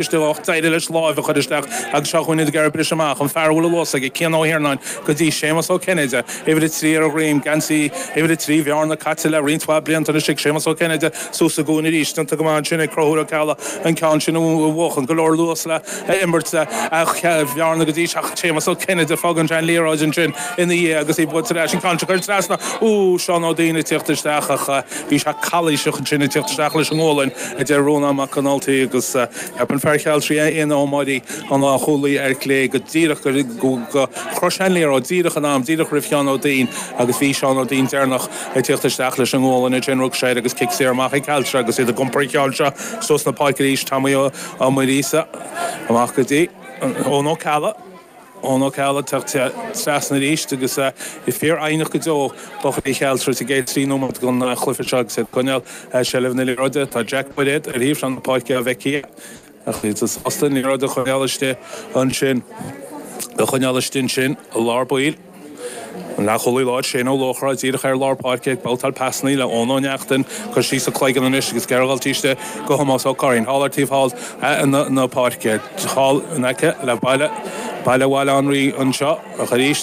Isteach, d'éirigh leis láimh a chuir isteach agus seo chugainn iad ag iarraidh briseadh amach, an fear a bhfuil an luas aige, Cian Ó hIarnáin, go dtí Séamus Ó Cinnéide, uimhir a trí ar a dhroim, geansaí uimhir a trí Bhearna caite le roinnt mhaith blianta anois ag Séamus Ó Cinnéide, suas sa gcúinne arís, déanta go maith ansin ag Conchúr Ó Ceallaigh, an ceann sin a bhuachan, go leor luas le imirt Bhearna go dtí Séamus Ó Cinnéide, fágann sé an liathróid ansin ina dhiaidh agus í buailte leis, an ceann sin a chuir trasna, úúú, Seán Ó Duinn ag tíocht isteach ach bhí sé calaoiseach ansin ag tíocht isteach leis an ngualainn, a deir Rónán Mac an Ultaigh agus theip an fear Chealtraí Aodhán Ó Muirí, an lánchúlaí ar chlé go díreach gur shroich sé an liathróid, díreach in am, díreach roimh Sheán Ó Duinn agus bhí Seán Ó Duinn deireanach ag teacht isteach leis an ngualainn a déanadh sé air agus cic saor amach ag Caltra agus iad ag iompar an cheann seo suas na páirce arís, Tomaí Ó Muirí seo, amach go dtí, Eoin Ó Ceallaigh. Eoin Ó Ceallaigh ag teacht trasna arís agus iad fíorfhoighneach go deo. Buachaillí Chealltra sa gcéad trí nóiméad den chluiche seo agus iad ag coinneáil seilbh na liathróide. Tá Jack Bairéad ar thaobh na páirce á bhfeiceadh é ach níl sé sásta an liathróid a choinneáil istigh ansin. Á choinneáil istigh ansin i lár baill. An leathchúlaí láir Shane Ó Luachra díreach ar lár páirce ag babhtáil pasannaí le Eoin Ó Neachtain, chuir síos an cloigeann anois agus ag iarraidh é a thabhairt aríst go Thomás Ó Curraoin thall ar taobh thall na páirce, thall in aice le baile Baile Bhaile Átha an Rí anseo ach arís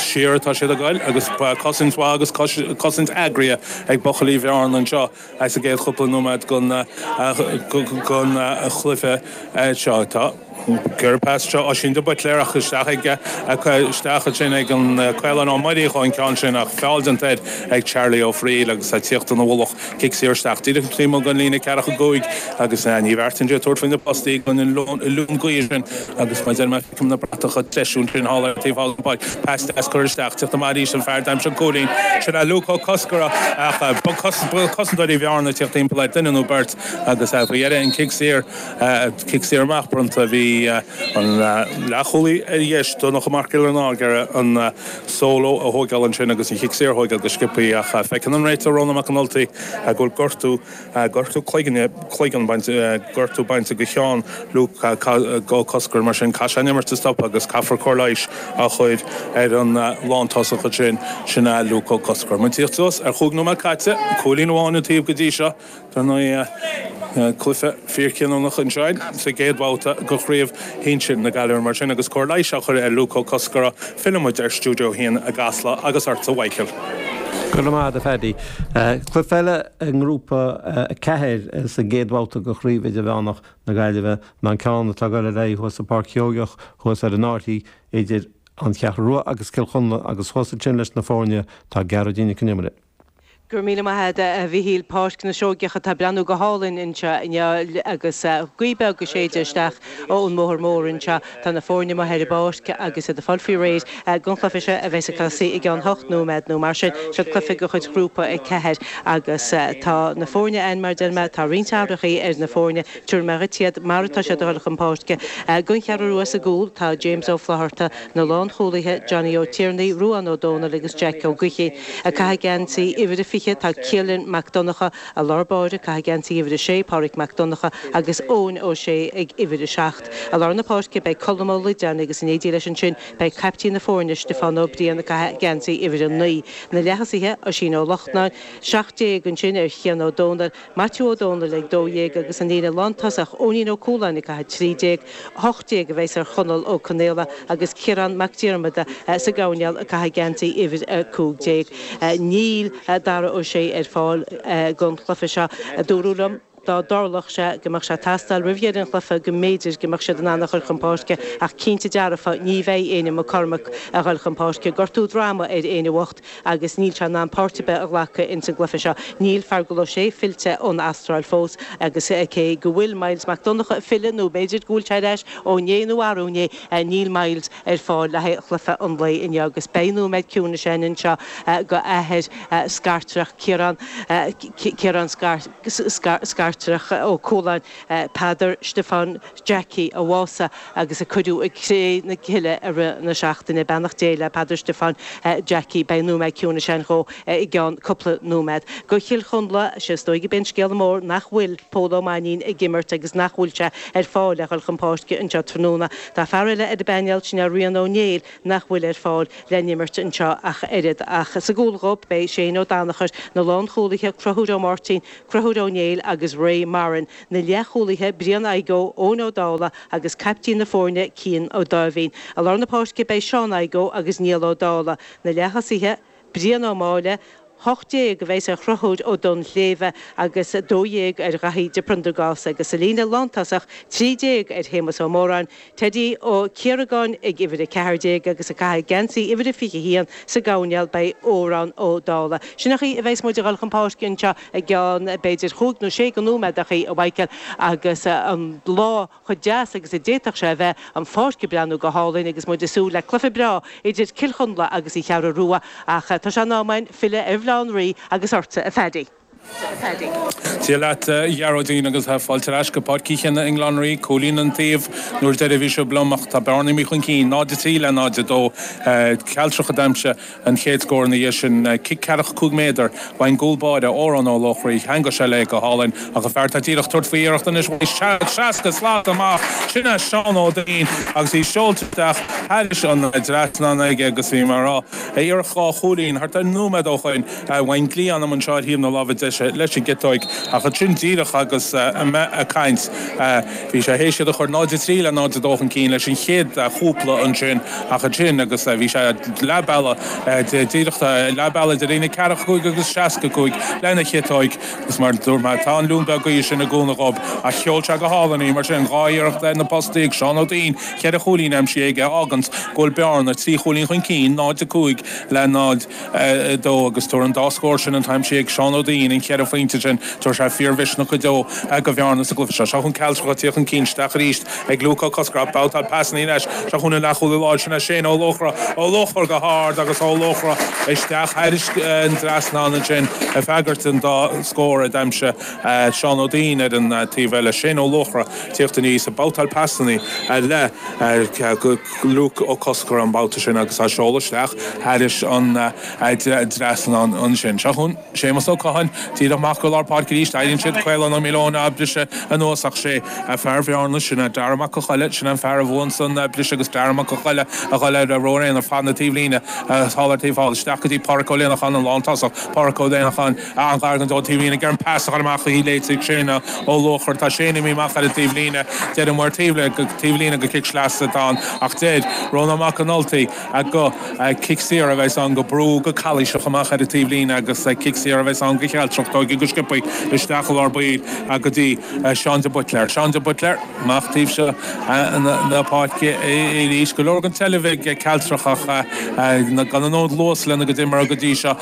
siar atá siad a ghoil agus cosaint mhaith agus cosaint eagraithe ag buachaillí Bhearna anseo. Sa gcéad chúpla nóiméad den chluiche seo, tá ag cur pas seo Oisín de Buitléar ach isteach ag isteach ansin ag an Caolán Ó Muirí chun an ceann sin ach feall déanta air ag Charlie Ó Fríl agus é ag tíocht ina mhullach. Cic saor isteach díreach ar imeall an líne ceathracha cúig agus Ní Bheartaind ag tabhairt faoi na postaí ag an lún gaoithe sin agus mar a deir mé Feicim na bratacha treisiúin faoin halla ar taobh thall den pháirc. Pas deas curtha isteach. Ag tíocht amach arís an fear a d'aimsigh an cúilín. Sin é Luke Ó Coscair. Ach bhí cosantóirí Bhearna ag tíocht timpeall air, duine nó beirt, agus faoi dheireadh an cic saor, cic saor amach bronnta. Bhí an leathchúlaí ar dheis, Donnacha Mac Giollarnáth, ag iarraidh an solo a thóigeáil ansin agus an cic saor a thóigeáil go sciopthaí. Ach feiceann an réiteoir Rónán Mac an Ultaigh go bhfuil gortú. gortú cloigne, cloigeann bainte, gortú bainte go cheann Luke Ó Coscair, mar sin caithfidh sé an imirt a stopadh agus caithfear cóir leighis a chur ar an lántosach ansin, sin é Luke Ó Coscair. Muid díreach suas ar chúig nóiméad caite, cúilín amháin an taobh go dtí seo an darna cluiche fíorchinniúnach anseo sa gcéad bhabhta de chraobh shinsir na Gaillimhe mar sin agus cóir leighis á chur ar Luke Ó Coscair. Fillfidh muid ar Stiúideo 1 i gCasla agus ort a Mhíchíl. Go raibh maith agat a Phaddy. Cluiche eile i nGrúpa 4 sa gcéad bhabhta de Chraobh Idirmheánach na Gaillimhe ná an ceann atá ag dul ar aghaidh thuas i Páirc Sheoigeach thuas ar an Áirthí idir An Cheathrú Rua agus Cill Chonla agus thuas ansin leis na foirne tá Gearóidín Nic an Iomaire, Go raibh míle maith agat, a Mhichíl. Páirc na Seoigeach atá ag breathnú go hálainn anseo inniu agus gaoth beag ag séideadh isteach ón mbóthar mór anseo. Tá na foirne amuigh ar an bpáirc agus iad ag fáil faoi réir don chluiche seo a bheas ag tosaí i gceann hocht nóiméad nó mar sin. Seo cluiche de chuid Ghrúpa 4 agus tá na foirne ann mar a deir mé. Tá roinnt athrachaí ar na foirne. Tabharfaidh mé dhuit iad mar atá siad a dhul chun páirce. Don Cheathrú Rua sa gcúl tá James Ó Flatharta. Na lánchúlaithe Johnny Ó Tiarnaigh, Ruán Ó Dónaill agus Jeaic Ó Gaoithín ag caitheamh geansaí uimhir a 20, tá Cillian Mac Donnacha i lár báire ag caitheamh geansaí uimhir a 6, Pádraig Mac Donnacha agus Eoin Ó Sé ag uimhir a 7. I lár na páirce beidh Colm Ó Loideáin agus in éindí leis ansin beidh caiptín na foirne Stiofán Ó Briain ag caitheamh geansaí uimhir a 9. Na leathosaithe Oisín Ó Lochlainn, 17, ansin ar Chian Ó Dónaill, Maitiú Ó Dónaill ag 12 agus an líne lántosach Eoinín Ó Cualáin ag caitheamh 13. 18 a bheas ar Chonall Ó Conaola agus Ciarán Mac Diarmada sa gcoirnéal ag caitheamh geansaí uimhir a cúig déag. Níl Darragh Ó Sé ar fáil don chluiche seo. Dúradh liom dá dtarlódh sé go mbeadh sé ag teastáil roimh dheireadh an chluiche go mb'fhéidir go mbeadh siad in ann a chur chun páirce ach cinnte dearfa ní bheidh Éinne McCormack ag dul chun páirce. Gortú droma ar Éinne bhocht. agus níl sé in ann páirt ar bith a ghlacadh ins an gcluiche seo. Níl Feargal Ó Sé fillte ón Astráil fós agus cé go bhfuil Myles Mac Donnchadha ag filleadh nó b'fhéidir go bhfuil sé ar ais ó inné nó arú inné, níl Myles ar fáil le haghaidh chluiche an lae inniu agus beidh nóiméad ciúnais ann anseo go athair Scartreach Ciarán Ciarán Scartreach Ó Cualáin, Peadar Stiofáin. Jackie a bhásaigh agus a cuireadh i gcré na cille i rith na seachtaine. Beannacht Dé le Peadar Stiofáin Jackie. Beidh nóiméad ciúnais ann dhó i gceann cúpla nóiméad. Go Chill Chonla, sé is dóigh gurb é an scéala mór nach bhfuil Pól Ó Mainín ag imirt agus nach bhfuil sé ar fáil le dhul chun páirce anseo tráthnóna. Tá fear eile ar an bpainéal, sin é Rian Ó Néill nach bhfuil ar fáil le n-imirt anseo ach oiread. Ach sa gcúl dhóibh, beidh Shane Ó Danachair, na lánchúlaithe, Conchúr Ó Máirtín, Conchúr Ó Néill agus Ray Marren. na leathchúlaithe Brian Adhaigh Ó, Eoin Ó Dála agus caiptín na foirne Cian Ó Dáimhín. I lár na páirce beidh Seán Adhaigh Ó agus Niall Ó Dála. Na leath-thosaithe Brian Ó Máille, 18, a bheidhs ar Chonchúr Ó Donnshléibhe agus 12 ar Dhaithí de Priondargás agus sa líne lántosach, 13, ar Shéamus Ó Móráin, Teddy Ó Ciaragáin ag uimhir 14 agus ag caitheamh geansaí uimhir a 21 sa gcoirnéal beidh Odhrán Ó Dála. Sin an chaoi a bheidhs muid ag dul chun páirce anseo i gceann b'fhéidir chúig nó sé go nóiméadachaí a Mhaidhcil agus an lá cho deas agus a d'fhéadfadh sé a bheith, an pháirc ag breathnú go hálainn agus muid ag súil le cluiche breá idir Cill Chonla agus an Cheathrú Rua ach tá sé in am againn filleadh ar Bhaile Átha an Rí agus ortsa a Phaddy. Dia leat a Ghearóidín agus fáilte ar ais go Páirc Uí Chionnaith i mBaile Átha an Rí, cúilín an taobh. An uair dheiridh a bhí sibh liom ach tá Bearna imithe chun cinn. 0-3 le 0-2. Cealtrach a d'aimsigh an chéad scór ina dhiaidh sin. Cic ceathracha cúig méadar ón gcúl báire, Odhrán Ó Laochraí, cheangail sé léi go hálainn. Ach an fear atá díreach tabhairt faoi iarracht anois bhain seans seasca slat amach. Sin é Seán Ó Duinnín agus í seolta isteach thairis an dtrasnán aige agus bhí mar a raibh a iarracht dhá chúilín thart ar nóiméad ó shoin. a bhain dlí anam anseo ar thaobh na láimhe deise leis an gciotóig, ach ansin díreach agus mé ag caint bhí sé théis iad a chur 0 3 le 0 2 chun cinn leis an chéad chúpla ansin, ach ansin agus bhí sé leath bealaigh díreach leath bealaigh idir an líne ceathracha a cúig agus seasca a cúig lena chiotóig agus mar dúirt mé tá an leoithne beag gaoithe sin ag cúnamh dhóibh ach sheol sé go hálainn í mar sin dhá iarracht ar na postaí ag Seán Ó Duinnín cheithre chúilín aimsithe aige a fháganns go bhfuil Bearna trí chúilín chun cinn 0 5 le 0 2 agus tabharfaidh an dá scór sin atá aimsithe ag Seán Ó Duinnín, an cheithre phointe sin, tabharfaidh sé fíor-mhisneach go deo go Bhearna sa gcluiche seo. Seo chugainn Cealtrach a' tíocht chun cinn, isteach arís ag Luke Ó Coscora, babhtáil pasannaí leis, seo chugainn an leath-chúlaí láir sin é Shane Ó Luachra, Ó Luachra go hard agus Ó Luachra isteach thairis an dtrasnán ansin ag freagairt an dá scór a d'aimsigh Seán Ó Duinnín ar an taobh eile. Shane Ó Luachra tíocht aníos ag babhtáil pasannaí le Luke Ó Coscora an babhta sin agus á seoladh isteach thairis an dtrasnán ansin. Seo chugainn Séamus Ó Catháin díreach amach go lár páirce arís. Éiríonn siad Caolán Ó Maoileoin á briseadh anuas ach sé fear Bhearna, sin é Darragh Mac Con Choille, sin an fear a bhuann san briseadh agus Darragh Mac Con Choille a dhul ar ruathar aonair fad na taobhlíne thall ar taobh thall. Isteach go dtí Páraic Ó Léanacháin an lántosach. Páraic Ó Léanacháin. An-ghar don taobhlíne ag iarraidh an pas a chur amach uaidh léite ag Shane Ó Luachra. Tá Shane imithe amach ar an taobh líne. Deir an maor taobh le taobh líne gur cic sleasa atá ann. Ach deir Rónán Mac an Ultaigh gur cic saor a bheas ann, gur brúdh, go calaoiseach amach ar an taobh líne agus cic saor a bheas ann go Chealtrach, tóigthe go sciobtha isteach i lár baill go dtí Seán de Buitléar. Seán de Buitléar amach taobh seo na páirce arís. Go leor den tseilbh ag Cealtrach ach gan an oiread luas lena gcuid imeartha go dtí seo.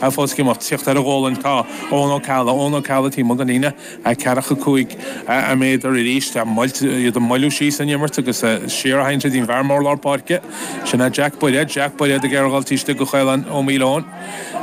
Ar fós ag imeacht. Tíocht ar a ghualainn tá Eoghan Ó Ceallaigh. Eoghan Ó Ceallaigh, taobh amuigh den líne 45 méadar arís. Iad ag moilliú síos an imirt agus siar a tharraingt go dtí'n bhfear mór lár páirce. Sin é Jack Bairéad. Jack Bairéad ag Iorghailtí istigh go Caolán Ó Maoileoin.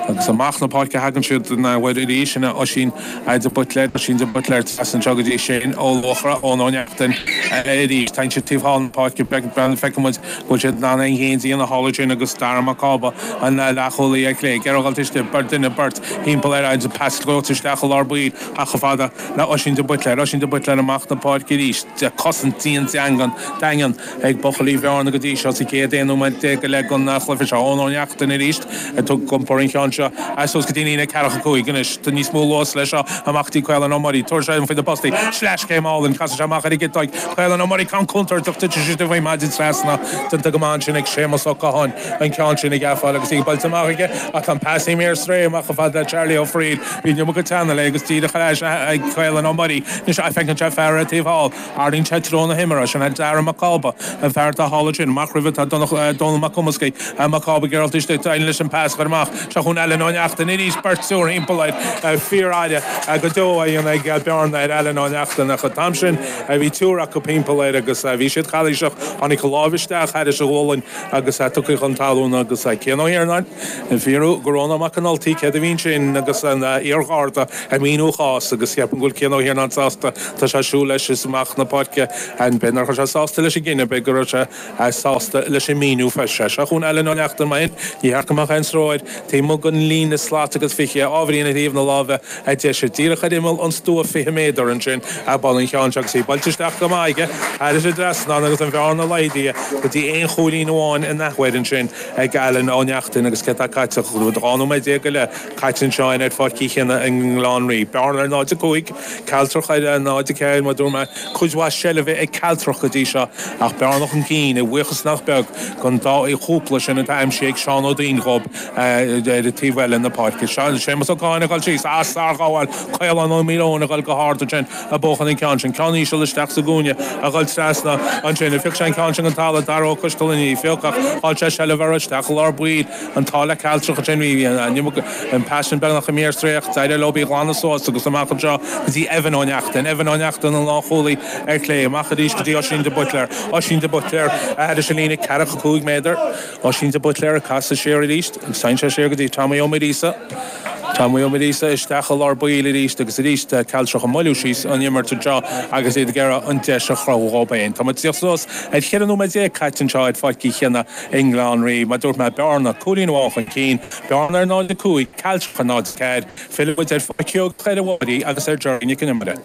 Agus amach 'na páirce a thagann siad anoir arís. Sin é Oisín de Buitléir. Oisín de Buitléir ag teacht anseo go dtí Shane Ó Luachra. Eoghan Ó Neachtain arís. Tagann siad taobh thall na páirce. Beag beann feicimid. Bhuail sé Dana an ghéim dian a thálaig sin agus Dara Mac Cába an leath-chúlaí ar chlé. Gearradh isteach beirt duine beirt thimpeall air agus pas scrios isteach i lár baill ach chomh fada le Oisín de Buitléir. Oisín de Buitléir amach na páirce arís. Cosaint dian deangan daingean ag buchaillí Bhearna go dtí seo sa gcéad aon nóiméad déag go leith den chluiche seo. Eoin Ó Neachtain arís ag tug iompar an cheann seo as suas go dtí líne ceathracha cúig. Anois níos mó luas le seo amach go dtí Caolán Ó Muirí. Tabhair seo fé na postaí. Sleaschéim álainn. Casann sé amach ar an gciotaig. Caolán Ó Muirí ceann cuntar do chtuigfidh sé sibh é maidin trasna déanta go maith ansin ag Séamus Ó Catháin an ceann sin a ghabháil agus í buailte amach aige ach tá an pas imithe ar strae amach ar fad le Charlie Ó Fraoigh bíonn liom go teannadh é agus díreach ar ais ag Caolán Ó Muirí ní seo a feiceann sé fear ar taobh thall ardaíonn sé treo na hiomaire sin Dara Mac Cába an fear atá thall ansin amach roimhe tá Dónall Mac Cumascaigh Tá Mac Cába ag gearradh isteach d'éirigh leis an pas a chur amach seo chugainn Alan Ó Neachtain arís beirt triúr thimpeall air faire go deo á dhéanamh ag Bearna ar Alan Ó Neachtain ach an t-am sin Bhí triúr acu timpeall air agus bhí siad calaoiseach. Tháinig an láimh isteach thairis a ghualainn agus tugtha chun talún agus Cian Ó hIarnáin ag fiafraí de Rónán Mac an Ultaigh céard a bhí ansin agus an iar-Gharda ag míniú a chás agus ceapaim go bhfuil Cian Ó hIarnáin sásta. Tá sé ag siúl leis amach na páirce and b'fhéidir nach raibh sé sásta leis an gcinneadh, b'fhéidir go raibh sé. Sásta leis an míniú freisin. Seo chugainn Alan Ó Neachtain mar sin. Ní ceart go mbeadh aon stró air. Taobh amuigh den líne slat agus fiche ábhairín ar thaobh na láimhe deise. Díreach ar imeall an stua fiche méadar ansin ag bualadh an cheann seo agus í buailte isteach go maith aige. Thairis an dtrasnán agus an bhearna laghdaithe go dtí aon chúilín amháin in athuair ansin ag Alan Ó Neachtain agus céard tá caite acu? Dhá nóiméad déag go leith caite anseo in ar Pháirc Uí Chionnaith i mBaile Átha an Rí. Bearna 0-5, Cealtrach ar 0-4 mar dúirt mé. Cuid mhaith seilbhe ag Cealtrach go dtí seo, ach Bearna chun cinn, a bhuíochas nach beag don dá fhaí chúpla sin atá aimsithe ag Seán Ó Donnchú ar an taobh eile na páirce. Séamus Ó Catháin ag dul síos, ah, sárghabháil! Caolán Ó Maoileoin ag dul go hard ansin, ag buachan an ceann sin. Ceann íseal isteach sa gcúinne, ag dul trasna ansin. Phioc sé an ceann sin den talamh. Darragh Ó Coistealláin a phioc, ach chaill sé seilbh air isteach i lár baill. An t-ádh le Cealtrach ansin mar bhí an pas sin beagnach imithe ar strae ach. D'éirigh leob í a ghlanadh suas agus amach anseo go dtí Evan Ó Neachtain. Evan Ó Neachtain, an lánchúlaí, ar chlé. Amach arís go dtí Oisín de Buitléar. Oisín de Buitléar, thairis an líne ceathracha cúig méadar. Oisín de Buitléar ag casadh siar arís. Téann sé siar go dtí Tommy Ó Muiríosa. Tommy Ó Muiríosa isteach i lár baill arís agus arís Cealtrach ag moilliú síos an imirt anseo agus iad ag iarraidh an deis a chruthú dhóib féin. Tá muid suas ag cheithre nóiméad déag caite anseo ar pháirc Uí Chionnaith. I mBaile Átha an Rí, mar dúirt mé, Bearna cúilín amháin chun cinn, Bearna ar 0-5, Cealtrach ar 0-4, fillfidh muid ar Pháirc Chill Aodha Bhuí agus ar Gerry Nic an Iomaire.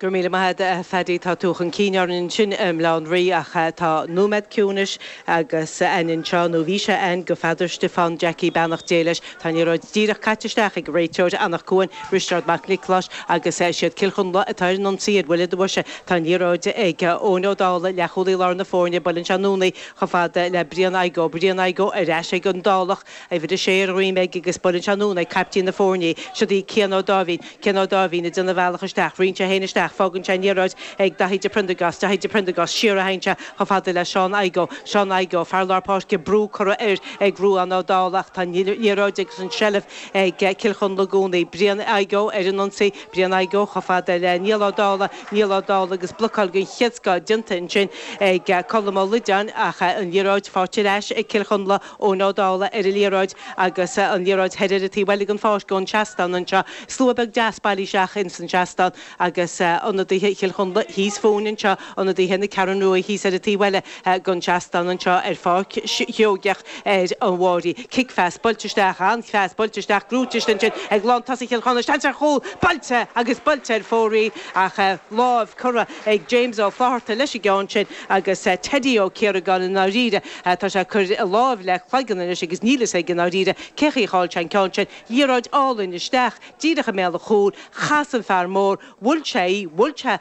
Go raibh míle maith agat a Phaddy, tá tú chun cinn orainn ansin i mBaile Átha an Rí ach tá nóiméad ciúinis againn anseo, nó bhí sé ann do Pheadar Stiofán Jackie, beannacht Dé leis. Tá an liathróid díreach caite isteach ag réiteoir Anach Cuain, Risteárd Mac Niocláis agus is iad Cill Chonla atá ar an ionsaí ar bhuille boise. Tá an liathróid ag Eoin Ó Dálaigh, leathchúlaí lár na foirne, buaileann sé anonn í, Chomh fada le Brian Igoe, Brian Igoe ar ais ag an Dálach, uimhir a sé ar a dhroim aige agus buaileann sé anonn ag caiptín na foirne, siod é Cian Ó Dáimhín, Cian Ó Dáimhín ag déanamh a bhealach isteach, ritheann sé féin isteach, fágann sé an liathróid ag Daithí de Priondargás, Daithí de Priondargás, siar a théann sé chomh fada le Seán Igoe, Seán Igoe, fear lár páirce, brú curtha air ag Ruadhán Ó Dála ach tá an liathróid agus an tseilbh ag Cill Chonla i gcónaí, Brian Igoe ar an ionsaí, Brian Igoe, chomh fada le Niall Ó Dálaigh, Niall Ó Dálaigh agus blocáil den chéad scoth déanta ansin ag Colm Ó Loideáin ach an liathróid faighte ar ais ag Cill Chonla, Eoin Ó Dálaigh ar an liathróid agus an liathróid thoir ar an taobh eile den pháirc ón seastán anseo. Slua beag deas bailithe isteach ins an seastán agus ionadaithe Chill Chonla thíos fúinn anseo, ionadaithe na Ceathrún Rua thíos ar an taobh eile. den seastán anseo ar Pháirc Sheoigeach ar an bhFairche, cic phas, buailte isteach, an-phas, buailte isteach, gnóite istigh ansin ag lán tosaigh Chill Chonla, seans ar chúl, buailte agus buailte ar fóraoil ach láimh curtha ag James Ó Flatharta leis an gceann sin agus Teddy Ó Ciaragáin i ndáiríre tá sé ag cur láimh le cloigeann anois agus níl a fhios aige i ndáiríre cé chaoi cháill sé an ceann sin, liathróid álainn isteach díreach i mbéal an chúil, chas an fear mór, bhuail sé í, bhuail sé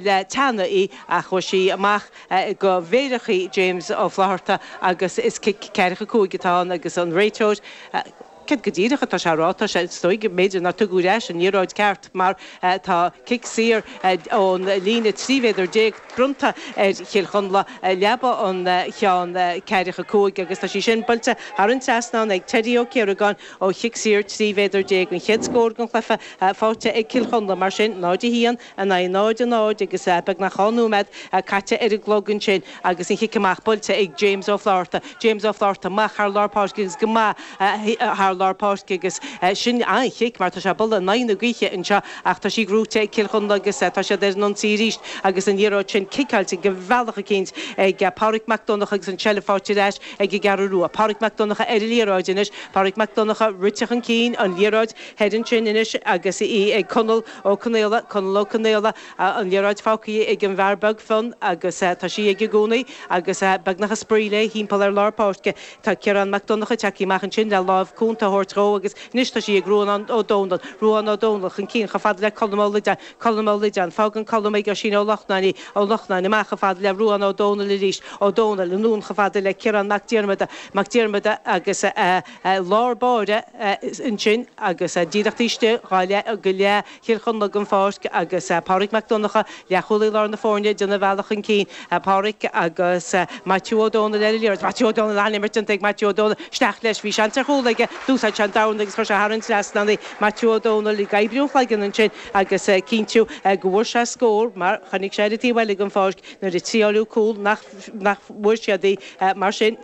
le teannadh í ach chuaigh sí amach. de mhéarachaí James Ó Flatharta agus is cic ceathracha cúig atá ann agus an réiteoir, céard go díreach atá sé á rá, tá sé is dóigh, b'fhéidir nár tugadh ar ais an liathróid ceart mar tá cic saor ón líne trí mhéadar déag bronnta ar Chill Chonla i leaba an cheann ceathracha cúig agus tá sí sin buailte thar an trasnán ag Teddy Ó Ciaragáin ó chic saor trí mhéadar déag an chéad scór den chluiche faighte ag Cill Chonla mar sin náid a haon in aghaidh náid a náid agus beagnach dhá nóiméad caite ar an gclog ansin agus an chic amach buailte ag James Ó Flaithearta. James Ó Flaithearta amach thar lár páirce agus go maith thar lár páirce agus sin an-chic mar tá sé ag bualadh in aghaidh na gaoithe anseo ach tá sí gnóite ag Cill Chonla agus tá siad ar an ionsaí arís agus an liathróid sin ciceáilte de bhealach eicínt ag Pádraic Mac Donnacha agus an tseilbh faighte ar ais ag an gCeathrú Rua. Pádraic Mac Donnacha ar an liathróid anois, Pádraic Mac Donnacha rite chun cinn, an liathróid thoir ansin anois agus í ag Conall, Ó Conaola, Conall Ó Conaola, an liathróid fágtha ag an bhfear beag fionn agus tá sí aige i gcónaí agus beagnach ag spraoi léi thimpeall ar lár páirce. Tá Ciarán Mac Donnacha tagtha amach ansin le láimh cúnta a thabhairt dhó agus anois tá sí ag Ruadhán Ó Domhnaill. Ruadhán Ó Domhnaill chun cinn chomh fada le Colm Ó Loideáin. Colm Ó Loideáin. Fágann Colm ag Oisín Ó Lochnáin í. Ó Lochnáin amach chomh fada le Ruadhán Ó Domhnaill arís. Ó Domhnaill anonn chomh fada le Ciarán Mac Diarmada. Mac Diarmada agus. lár báire, ansin, agus díreach taobh istigh dhá leath, de leath Chill Chonla den pháirc, agus Pádraig Mac Donncha, leathchúlaí lár na foirne, déanamh a bhealach chun cinn. Pádraig agus Maitiú Ó Dónaill ar an liathróid. Maitiú Ó Dónaill, an-imirt déanta ag Maitiú Ó Dónaill. Isteach leis, bhí seans ar chúl aige, d'úsáid sé an domhan agus chuir sé thar an trasnán. Maitiú Ó Dónaill ag oibriú an chloigeann ansin agus ag cinntiú go bhfuair sé scór, mar chonaic sé ar an taobh eile den pháirc nuair a triáileadh cúl nach bhfuair siad í. Mar sin.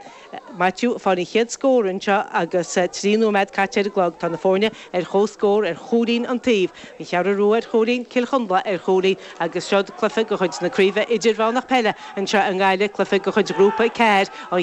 Maitiú, fáil an chéad scór anseo agus trí nóiméad caite ar an gclog. Tá na foirne ar chomhscór ar chúilín an taobh. An Cheathrú Rua ar chúilín, Cill Chonla ar chúilín agus seo'd cluiche de chuid na Craoibhe Idirmheánach Peile anseo i nGaillimh, cluiche de chuid Ghrúpa 4 an.